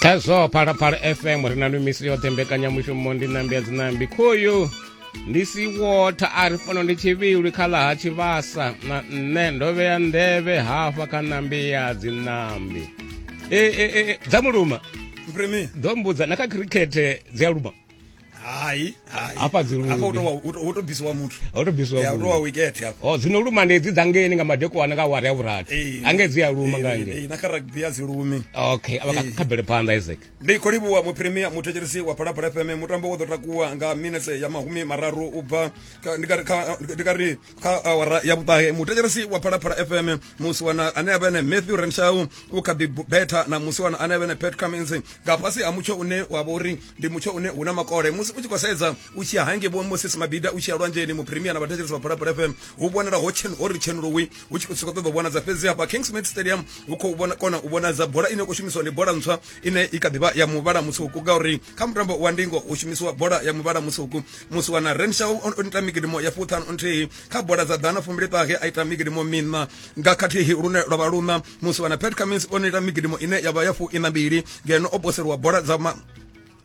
khazwo phalaphala fm ri na lumisi yoṱhe mbekanyamushumo ndi nambi ya dzinambi khoyu ndi si wotha a ri fano ndi tshivhilwi kha ḽa ha tshivhasa na nṋe ndo vhea nḓevhe hafha kha nambi ya dzinambi e, e, e, e, dza muluma ḓo mbudza na kha khirikhethe dzi a luma hayi hayi Hafha dzi lugi. hafha u tou wa- u tou- u tou bisiwa muthu Ho tou bisiwa Ya, u tou wa muthu. wicket hafha o dzino luma ndi dzi dza ngeni nga madekwana nga awara ya vhurathi Eh, ange dzi a luma nga eh, eh, ngei na kha rugby a dzi lumi okay a vha kha- kha bvele phanḓa isaac ndi khou livhuwa muphirimiya muthetshelesi wa phalaphala fm mutambo wo ḓo takuwa nga minetse ya mahumi mararu u bva kha- ndi ka ri- kha- ndi ka ri kha awara ya vhuṱahe muthetshelesi wa phalaphala fm musi wana ane a vhene matthew renshau u kha ḓi betha na musi wana ane a vhene pet cummins nga fhasi ha mutsho une wa vha uri ndi mutsho une hu na makole musi u tshi khou sedza u tshi ya hange vho moses mabida u tshi ya lwanzheni mupremia na vhathetshelesi vha phalaphala fm hu vhonala ho chen ho ri chenulowi hu tshi khou sokou ṱoḓa u vhonadza fhedzi hafha kingsmid stadium hu khou vhona kona u vhonadza bola ine ya khou shumiswa ndi bola ntswa ine i kha ḓivha ya muvhala mutswuku ngauri kha mutambo wa ndingo hu shumisiwa bola ya muvhala mutswuku musiwana renshaw o ita migidimo ya fuṱhanu nthihi kha bola dza ḓana fumbili ṱahe a ita migidimo miṋa nga khathihi lune lwa vha luṋa musiwana pet cummins o ita migidimo ine ya vha ya fu ina mbili ngeno o poseliwa bola dza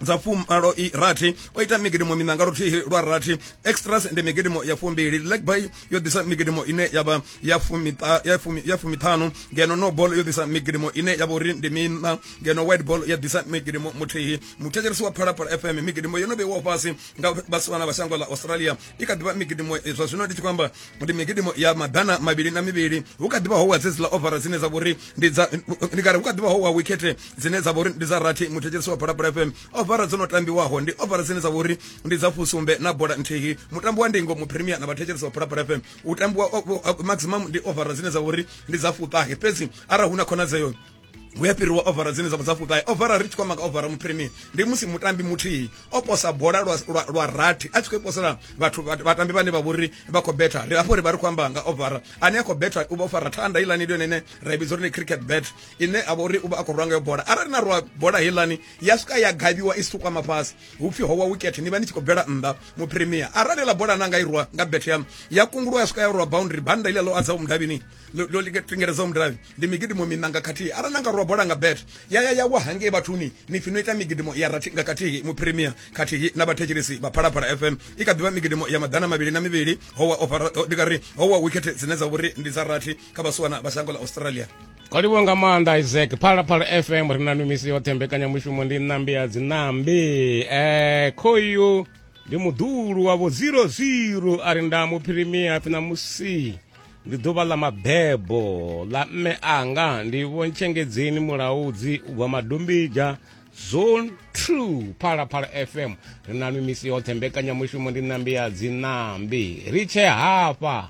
dza fumalo i rathi o ita migidimo miṋa nga luthihi lwa rathi extras ndi migidimo ya fumbili legby yo ḓisa migidimo ine ya vha ya fumiṱa- ya fumi- ya fumiṱhanu ngeno no ball yo ḓisa migidimo ine ya vha uri ndi miṋa ngeno white ball ya ḓisa migidimo muthihi muthetshelesi wa phalaphala fm migidimo yo no vheiwaho fhasi nga vhasiwana vha shango ḽa australia i kha ḓivha migidimo eh, zwa zwino ndi tshi khou amba ndi migidimo ya maḓana mavhili na mivhili hu kha ḓivha ho wa dzedziḽa ovara dzine dza vha uri ndi dza ndi kare hu kha ḓivha ho wa wikete dzine dza vha uri ndi dza rathi muthetshelesi wa phalaphala fm ovara dzo no tambiwaho ndi ovara dzine dza vha uri ndi dza fusumbe na bola nthihi mutambo wa ndingo mu premier na vhathetshelesi wa phalaphala fm u tambiwa maximum ndi overa dzine dza uri ndi dza fuṱahe fhedzi arali hu na khonadzeo hu ya fhiriwa overa dzine dza dza fuṱahe overa ri tshi kwama nga overa mu premier ndi musi mutambi muthihi o posa bola lwa, lwa, lwa rathi a tshi khou posela vhathu vhatambi vhane vha vhori vha khou betha ri afho ri vha ri khou amba nga overa ane a khou betha u vha o fara thanda heilani ndi yone ine ra i vhidza uri ni cricket bet ine a vha uri u vha a khou rwa ngayo bola arali na rwa bola heilani ya swika ya gavhiwa i si tu kwama fhasi hupfi ho wa wicket ni vha ni tshi khou bvela nnḓa mu premier arali ḽa bola na nga irwa nga bet ya ya kungulwa ya swika ya rwa boundary banda ile lo adza umdavhini lo tingeledza umdavhi ndi migidimo minanga khathihi arali na nga rwa bola nga bet ya ya ya wa hangei vhathuni ni fino ita migidimo ya rathi nga khathihi mu premier khathihi na vhathetshelesi vha phalaphala fm i kha ḓivha migidimo ya maḓana mavhili na mivhili howa ofara ndi kari howa wicket dzine dza vhori ndi dza rathi kha vhasiwana vha shango ḽa australia o livhuwa nga maanḓa isaac phalaphala fm ri na mimisi yoṱhe mbekanyamushumo ndi ṋambi ya dziṋambi um eh, khoyu ndi muḓulu wavho 00 a ri nda muphirimia pfi na musi ndi ḓuvha ḽa mabebo ḽa mme anga ndi vhontshengedzeni mulaudzi u bva madombidzha zone 2 phalaphala fm ri na mimisi yoṱhe mbekanyamushumo ndi ṋambi ya dziṋambi ri tshe hafha